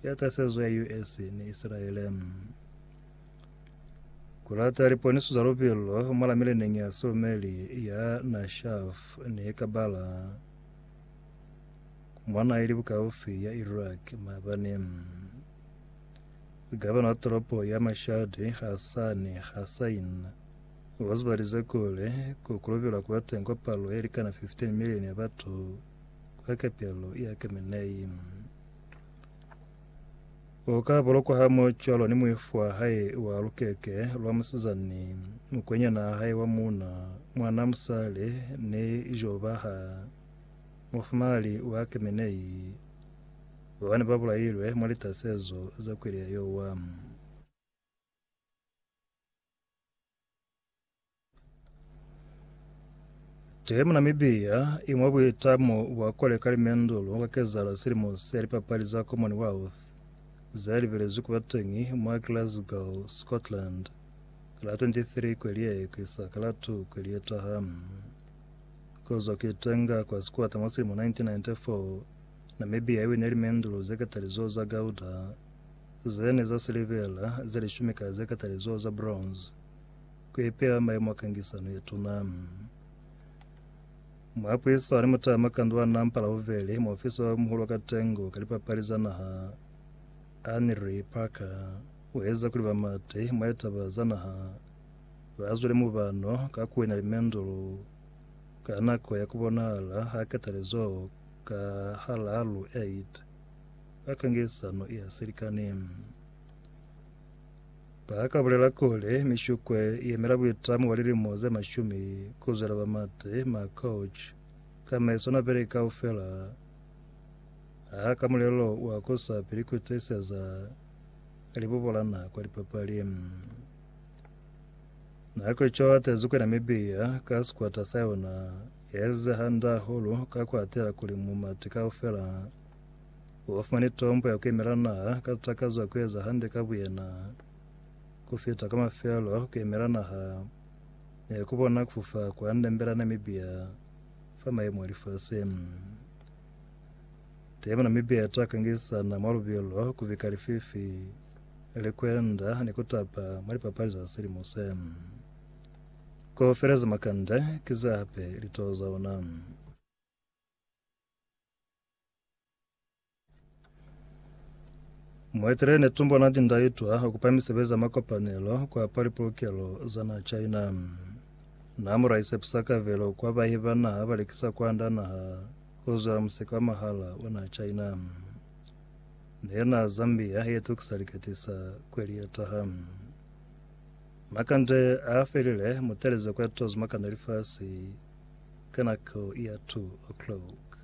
ya tasezo ya US ni Isilaele. Kulata liponiso za lupilo mwa la mileneñi ya sumeli ya Nashaf ni Kabala mwana ili bukaufi ya Iraq mabani. Gavana wa toropo ya Mashhad Hassan Hassain o zibalize kuli ku kulubila ku ba teng kwa palo ye likana 15 milioni ya batu kwa kepelo ya Kemenaim. O ka bolokwa ha mo cwalo ni muifu wa hae wa lukeke lwa musizani, mukwenyana wa hae wa muuna, mwana musale, ni Jobaha, mufumali wa Kemenai, babane ba bulailwe mwa litasezo za kweli ya Yoamu. Te mu Namibia, imwe buitamo bwa koleka limendulu ka kezala silimo se lipapali za Commonwealth ze libelezwi kuba teñi mwa Glasgow, Scotland, ka la 23 kweli ye ku isa ka la 2 kweli ye taha. Kozwa ku itenga kwa sikwata mwa silimo 1994, Namibia iwine limendulu ze katalizoho za Gauda, Ze ne za silivera ze lishumi ka ze katalizoho za bronze, ku ipeha mayemo a kangisano ye tuna. Muapuisani mutama ka ndwana mpalauveli, muofisa o muhulu wa ka tengo ka lipapali za naha, Henry Parker, u eza kuli bamati mwa litaba za naha ba zwele mubano ka ku wina limendulu ka nako ya ku bonahala ha katalizoho ka halalu 8. Ba kangelisano ya silikani ba ka bulela kuli mishukwe i yemela buitamo bwa lilimo ze mashumi ku zwela ba Mate Markouch ka meso na beke kaufela ha ka mulelo wa ku sa pili ku tiiseza libubolana kwa lipapali. Na ku co atezi kuli Namibia ka sikwata sa yona ya ezize hande hahulu ka ku atela kuli mumati kaufela Ba fumani tombo ya ku yemela naha ka takazo ya ku eza hande ka buyena. Ku fita ka mafelo, ku yemela naha ne ku bona ku fufa kwa ndembe la Namibia fa mayemo a lifasi. Temo Namibia ita kangisana mwa lubilo, ku bika lififi, likwenda ni ku tapa mwa lipapali za silimo se. Kaufela za makande ki za hape litoho za ona. Mueteleli Netumbo Nandi-Ndaitwah ukupa misebezi ya makopanelo kwapa lipolokelo za naha China. Na muraisepisa kabelo kwa bahi ba naha balekisa kwanda naha kuzwela museka wa mahala wa naha China. Nena Zambia yetukisa liketisa kweli yetaha. Makande a felile mutelezi kwa tozi makana lifasi ka nako ya 2 o'clock.